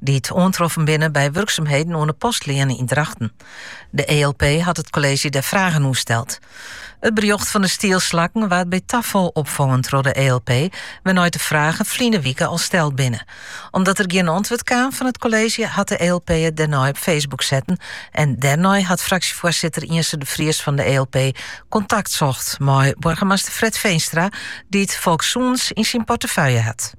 dy't oantroffen binne by wurksumheden oan de Postleane yn Drachten. De ELP hat it kolleezje dêr fragen oer steld. It berjocht fan de stielslakken waard by tafal opfongen troch de ELP, wêrnei't de fragen ferline wike al steld binne. Omdat der gjin antwurd kaam fan it kolleezje hat de ELP it dêrnei op Facebook setten en dêrnei hat fraksjefoarsitter Yntze de Vries fan de ELP kontakt socht mei boargemaster Fred Veenstra, dy't folkssûnens yn syn portefeuille hat.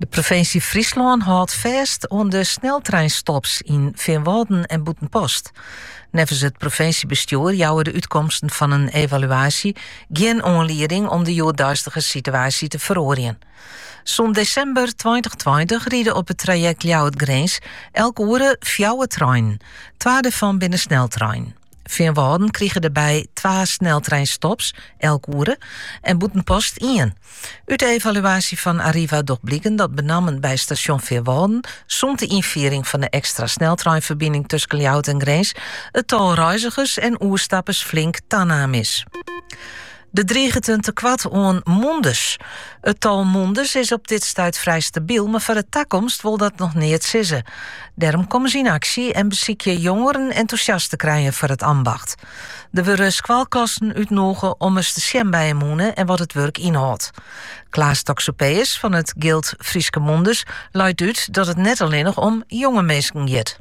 De provinsje Fryslân hâldt fêst oan de sneltreinstops yn Feanwâlden en Bûtenpost. Neffens it provinsjebestjoer jouwe de útkomsten fan in evaluaasje gjin oanlieding om de hjoeddeistige situaasje te feroarjen. Sûnt desimber 2020 ride op it trajekt Ljouwert-Grins elk oere fjouwer treinen. Twa dêrfan binne sneltreinen. Feanwâlden krige dêrby twa sneltreinstops elk oere en Bûtenpost ien. Ut de evaluaasje fan Arriva docht bliken dat benammen by stasjon Feanwâlden sûnt de ynfiering fan de ekstra sneltreinferbining tusken Ljouwert en Grins it tal reizigers en oerstappers flink tanaam is. Der driget in tekoart oan mûnders. It tal mûnders is op dit stuit frij stabiel, mar foar de takomst wol dat noch neat sizze. Dêrom komme se yn aksje en besykje jongeren entûsjast te krijen foar it ambacht. Der wurde skoalklassen útnûge om ris te sjen by 'e mûne en wat it wurk ynhâldt. Klaas Toxopeus fan it Gild Fryske Mounders leit út dat it net allinnich om jonge minsken giet.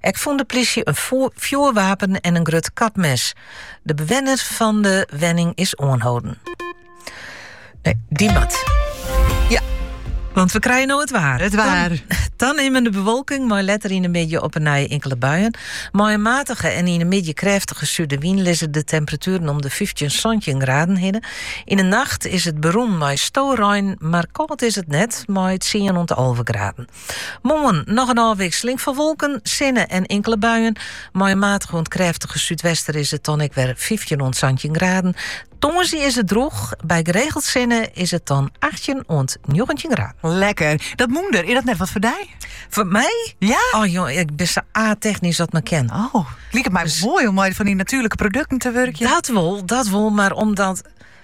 Ek fûn de plysje in fjoerwapen en in grut kapmes. De bewenner fan de wenning is oanholden. Nee, die mat. Want we krije no it waar. It waar. Tanimmende bewolking, mei letter yn de middei op 'e nij inkele buien. Mei in matige en yn de middei krêftige sudewyn lizze de temperatueren om de 15 17 graden hinne. Yn de nacht is it berûn mei storein, mar kâld is it net, mei 10 oant 11 graden. Moarn noch in ôfwikseling fan wolken, sinne en inkele buien. Mei in matige oant krêftige súdwester is it dan ek wer fyftjin oant santjin graden. Tongersdei is it drûch, by geregeld sinne is it dan achttjin oant njoggentjin graden. Lekker. Dat mûnder, is dat net wat foar dy? Foar my? Ja? Oh jong, ik ben sa a-technysk as 't mar kin. Oh, liket my moai om mei fan dy natuerlike produkten te wurkjen. Dat wol, dat wol, mar omdat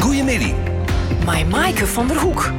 Goeiemiddei. Mei Maaike van der Hoek.